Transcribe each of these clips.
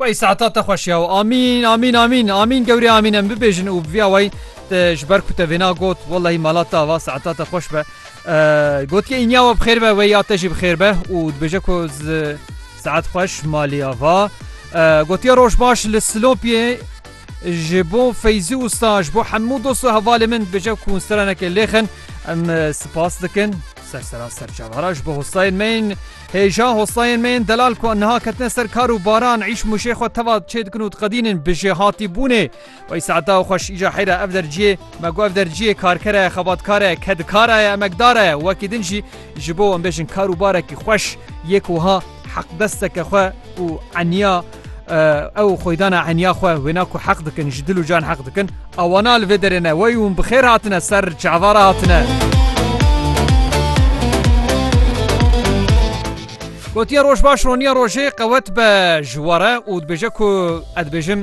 Wey saeta te xweş ya û amîn amîn amîn amîn gewrê amîn em bibêjin û viya wey te ji ber ku te vêna got wellahî mala te ava saeta te xweş be gotiye înya we bixêr be wey ya te jî bixêr be û dibêje ku saet xweş malê ava gotiye roj baş li silopiyê ji bo feyzî usta ji bo hemû dost û hevalê min dibêje ku seraneke lêxin em spas dikin ser sera serçavara ji bo hostayên me Hêja hostayên me yên delal ku niha ketine ser kar û baran îş mûşê xwe teva çê dikin û diqedînin bi jêhatîbûnê. Wey saeta xweş îja heyra ev derciyê me got ev derciyê karkera ye, xebatkara ye, kedikara ye, emekdara ye. Wekî din jî ji bo em bêjin kar û barekî xweş yê ku wiha heqdesteke xwe û eniya. Ew xwedana enya xwe wêna ku heq dikin ji dil û can heq dikin awana li vê derê ne wey hûn bi xêr hatine ser çavara hatine. Gotiye roj baş roniya rojê qewet be ji were û dibêje ku ez dibêjim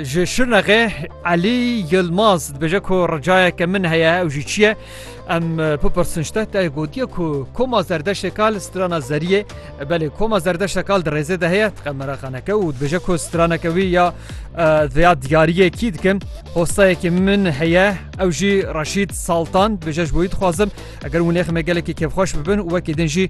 ji şirnexê Elî Yilmaz dibêje ku ricayeke min heye ew jî çiye Em bipirsin ji te te gotiye ku koma zerdeşê kal strana zeriyê belê koma zerdeşe kal di rêzê de heye dixe meraqaneke û dibêje ku straneke wî ya veya diyariyê kî dikim hostayekî min heye ew jî reşîd saltan dibêje ji bo wî dixwazim eger winêximê gelekî kêfxweş bibin û wekî din jî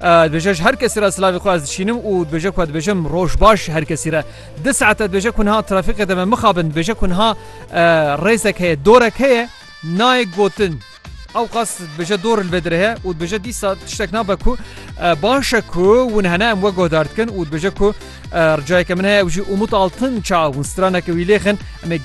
Dibêje ji her kesî re silavê xwe ez dişînim û dibêje ku dibêjim roj baş ji her kesî re. Di saete dibêje ku niha trafîqê de me mixabin dibêje ku niha rêzek heye dorek heye nayê gotin. Ew qas dibêje dor li vê dirê heye û dibêje dîsa tiştek nabe ku baş e ku hûn hene em we guhdar dikin û dibêje ku ricayeke min heye ew jî Umut Altınç'a hûn straneke wî lêxin em ê